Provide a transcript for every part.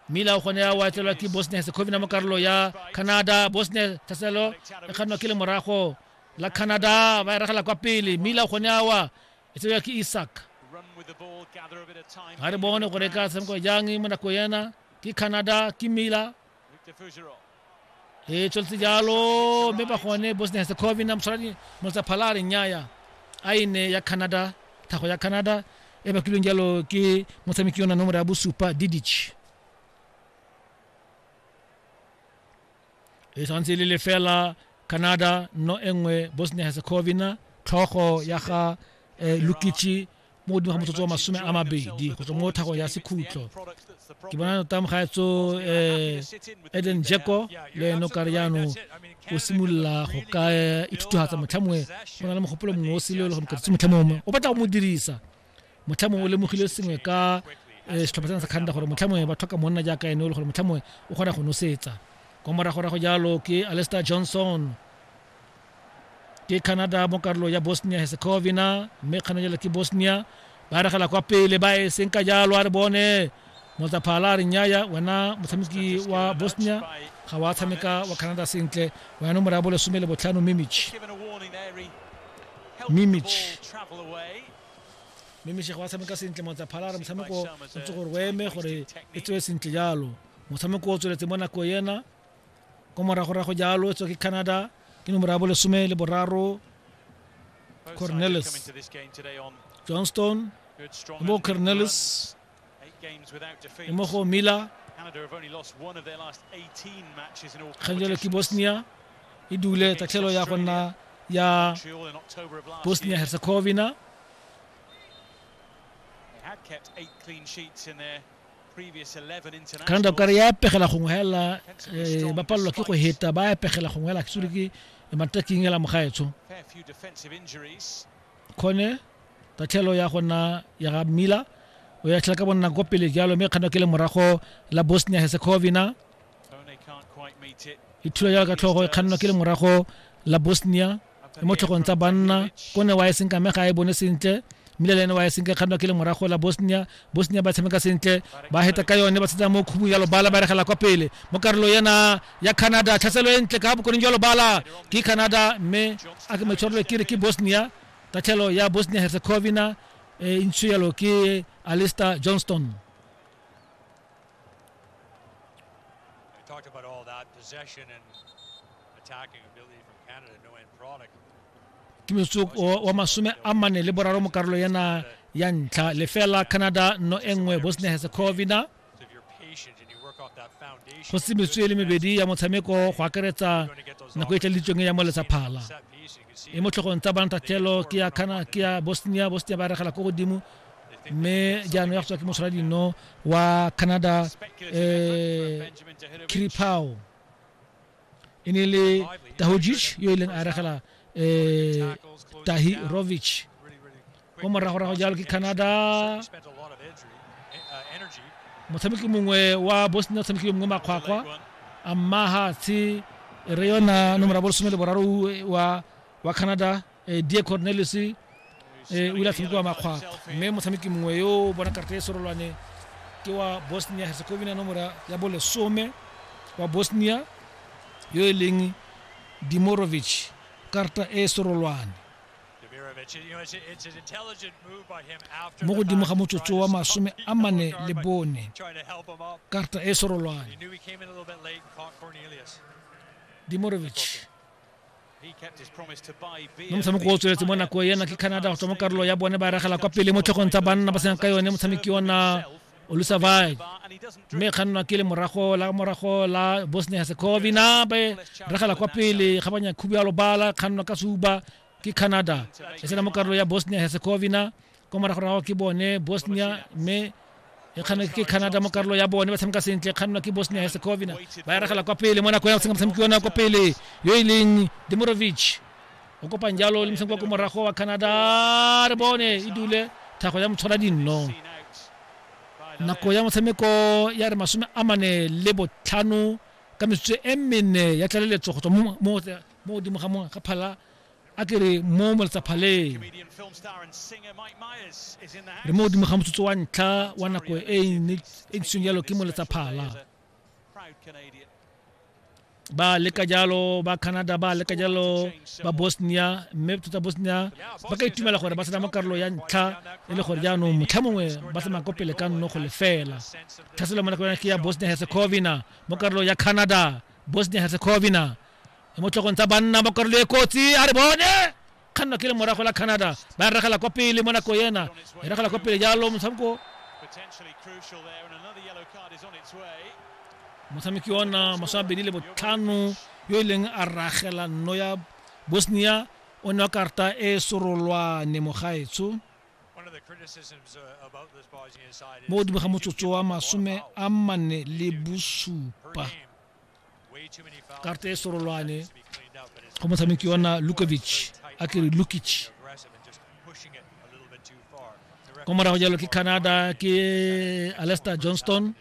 Miller o kgone ya watlelwa ke bosnia herzegovina mo karolo ya canada bosnia thaselo e kgannwa ke lemorago la canada ba e ragela kwa pele Miller o kgone ya wa e tsebja ke isak ga re bone gore ka tshameko jang mo nako yena ke canada ke Miller e tsweletse jalo mme ba gone bosnia herzegovina motshwaradi motsa phala a re nnyaya a e ne ya canada tlhago ya canada e bakilweng jalo ke motshameki yona nomoro ya bosupa didich e tshwanetse le lefela canada no e nngwe bosnia herzegovina tlhogo ya ga eh, lukichi mo godimo ga motsotso wa masome a mabedi go tswa mo thagong ya sekhutlo ke bona tota mogaetso um eh, eden jeko le ene o kare jaanong o simolola go ka eh, ithuthugatsa motlha mongwe go na le mogopolo mongwe o sele e le go mokatse motlha mongwe o batla go mo dirisa motlha mongwe o lemogile sengwe ka eh, setlhopha sena sa kganda gore motlha mongwe ba tlhoka monna jaaka ene o le gore motlha mongwe o kgona go nosetsa kwa moragorago jalo ke alester johnson ke canada mo karolo ya bosnia herzegovina mme kganejela ke bosnia ba regela kwa pele ba e seng ka jalo a re bone motsaphala a re nyaya wena motshameki wa bosnia ga wa tshameka wa canada sentle wena nomoro ya bolesome le botlhano mimich mimich mimich ga wa tshameka sentle motsaphala a re motshameko o tse gore o eme gore e tswe sentle jalo motshameko o tsweletse mo nako ena ko moragorago jalo tswa ke canada ke nomoro ya bolesome le boraro cornelis johnston mo cornelis mo go miller kgang ke bosnia e dule tatlhelo ya go nna ya bosnia herzegovina ka nako kare ya pegela gongwe hela eh, ba palelwa ke go heta ba ya pegela gongwe hela sure ke mataking hela mogaetsho khone tatlhelo ya gona ya ga mila o ya tlhela ka bonna ko pele jalo mme kgano ke le morago la bosnia herzegovina e thula jalo ka tlhogo e kgannwa ke le morago la bosnia e mo tlhogong tsa banna ko ne wa e senka me ga e bone sentle mmile le ene wa e senka kgannwa ke le morago la bosnia bosnia ba tshameka sentle ba heta ka yone ba tshetsa mo khubung ya lobala ba regela kwa pele mo karolo ena ya canada tlhaselo e ntle ka bokoneng jwa lobala ke canada mme a ke maitshwarelo ke re ke bosnia tatlhelo ya bosnia herzegovina e ntsho yalo ke alister johnston talked about all that possession and ke motsoko wa masome a mane le boraro mo karolo yana ya ntlha lefela canada no e nngwe bosnia herzegovina go se metswe le mebedi ya motshameko go akaretsa nako e tlalitsweng ya molesa phala e mo tlhogong tsa banatatlhelo ke ya kana ke ya bosnia bosnia ba regela ko godimo mme jaanong ya go tswa ke moshwara dino wa canada um eh, kiripao e ne le tahojic yo e leng a regela um tahi rovic o moragorago jalo ke canada motshameki mongwe wa bosnia o tshamekile mongwe makgwakgwa a mmaga tshe re yona nomora bolesome le boraro wa wa canada Eh, die cornelius eh, o ile a tshamekiwa makgwakgwa mme motshameki mongwe yo o bona karata e serolwane ke wa bosnia herzegovina nomora ya bolesome wa bosnia yo e leng dimorovic karata e serolwane mo godimo ga motsotso wa masome a mane le bone karata e serolwane dimorovic mo motshameko o tsweletse mo nako ena ke canada go tswa mo karolo ya bone ba ragela kwa pele mo tlhogong tsa banna ba sena ka yone motshameki ona olusavai mme kgannwa ke le morago la morago la bosnia herzegovina ba ragela kwa pele ga banya khubialo bala kgannwa ka suba ke canada e sena mo karolo ya bosnia herzegovina kwa moragorago ke bone bosnia mme e kgana ke canada mo karolo ya bone ba tshameka sentle e kgannwa ke bosnia herzegovina ba eragela kwa pele mo nako ya tshameka motshameki ona kwa pele yo e leng demorovich o kopang jalo le motshameki wa ko morago wa canada re bone e dule thago ya motshwara dinno nako ya motshameko ya re masome a mane le botlhano ka metsotso e mene ya tlaleletso go tswa mo godimo ga phala a ke re mo moletsaphaleeng re mo godimo ga motsotso wa ntlha wa nako e e ntseng jalo ke moletsaphala ba leka jalo ba canada ba leka jalo ba bosnia mme tota bosnia ba ka itumela gore ba tsena mo karolo ya ntlha e le gore jaanong motlha mongwe ba tsamaya ko pele ka nno go lefela tlhaselo mo nako ya ke ya bosnia herzegovina mo karolo ya canada bosnia herzegovina e mo tlhogong tsa banna mo karolo e kotsi a re bone kganna ke le morago la canada ba regela kwa pele mo nako ena e regela kwa pele jalo motshameko motshameki ona masome abedi le botlhano yo e leng a ragela nno ya bosnia o ne wa karta e sorolwane mogaetsho mo godimo ga motsotso wa masome a mane le bosupa karte e sorolwane go motshameki ona lukovic a ke re lukic ko morago jalo ke canada ke alester johnston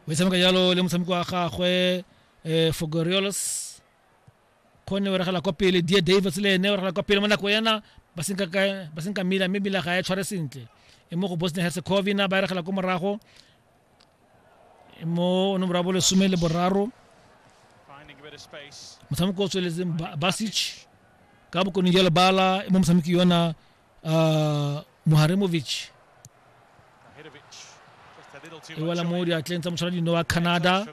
o tshameka jalo le motshameki wa gagwe um fogoriolos kgone o regela kwa pele die davis le ene o regela kwa pele mo nako ena ba senka mila mme mila ga e tshware sentle e mo go bosnia herzegovina ba regela ko morago mo nomoro ya bolesome le boraro motshameko o tsweletseng basic ka bokone jwa lebala e mo motshameki yona uh, moharemovic e wela mo diatleng tsa motshwara dino wa canada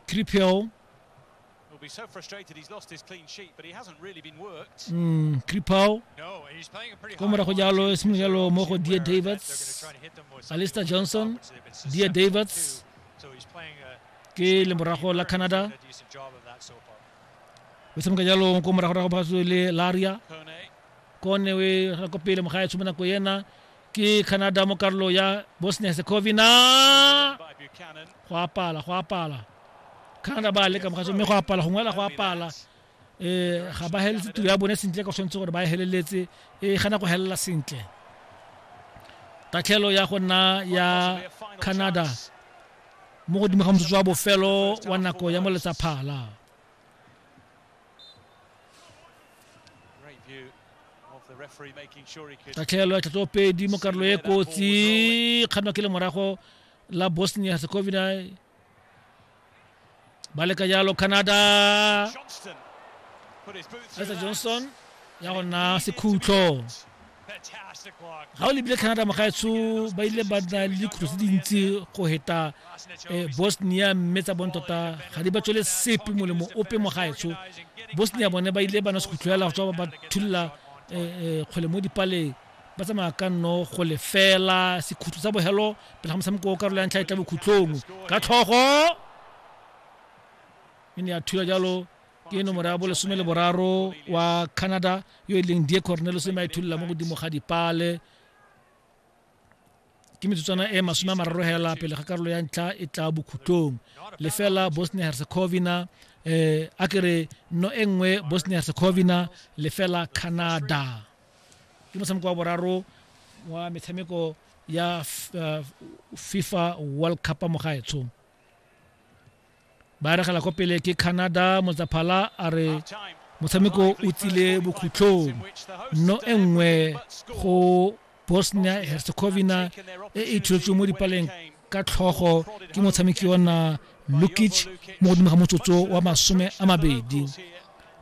cripel Mm, Kripau ko morago jalo e simolola jalo mo go Dia Davids, Alistair Johnson, Dia Davids ke lemorago la Canada. O tshameka jalo ko morago rago ba le Laria. Kone we ra ko pele mo gae tshumana ko yena ke canada mo karolo ya bosnia secovina go apala go apala canada ba leka mogatso mme go apala go ngwela go apala um ga ba heletse tiro ya bone sentle ka tshwanetse gore ba e heleletse e gana go helela sentle tatlhelo ya go nna ya canada mo godimo ga motsotso wa bofelo wa nako ya moletsa phala ka tlhaelo ya tlhatsopedi mo karolo e kotsi kganwa ke le morago la bosnia herzegovina ba leka jalo canada esa johnson ya go nna sekhutlo ga o lebile canada mogaetsho ba ile ba na le dikhutlho tse dintsi go heta eh, bosnia mme tsa bone tota ga di ba tswele sepe molemo ope mogaetsho bosnia bone ba ile ba na sekhutlho yala go tswa ba thulula eh, eh, kgwele mo dipaleng ba tsamaya ka nno go lefela sekhutlho sa bogelo pele ga motshameko o karolo ya ntlha e tla bokhutlhong ka tlhogo e ne ya thula jalo ke nomoro ya bolesome le boraro wa canada yo e leng die cornelos e maithulela mo godimo ga dipale ke metsotswana e masome a mararo hela pele ga karolo ya ntlha e tla bokhutlong lefela bosnia herzegovina eh a kere no e nngwe bosnia herzegovina lefela canada ke motshameko wa boraro wa metshameko ya eh, fifa world cup mo gaetsong ba regela ko pele ke canada motsaphala a re motshameko o tsile bokhutlhong no e nngwe go bosnia herzegovina e e thuletsweng mo dipaleng ka tlhogo ke motshameki ona lukic mo godimo ga motsotso wa masome a mabedi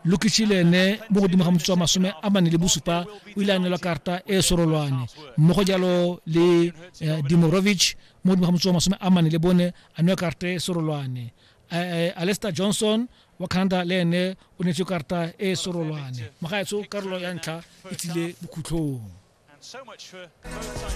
lukic le ene mo godimo ga motsotso wa masome a mane le bosupa o ile a neelwa karata e e sorolwane mmogo jalo le eh, dimorovic mo godimo ga motso wa masome a mane le bone a newa karata e serolwane alester johnson wa canada le ene o neetswe karata e e serolwane mogaetsho karolo ya ntlha e tsile bokhutlhong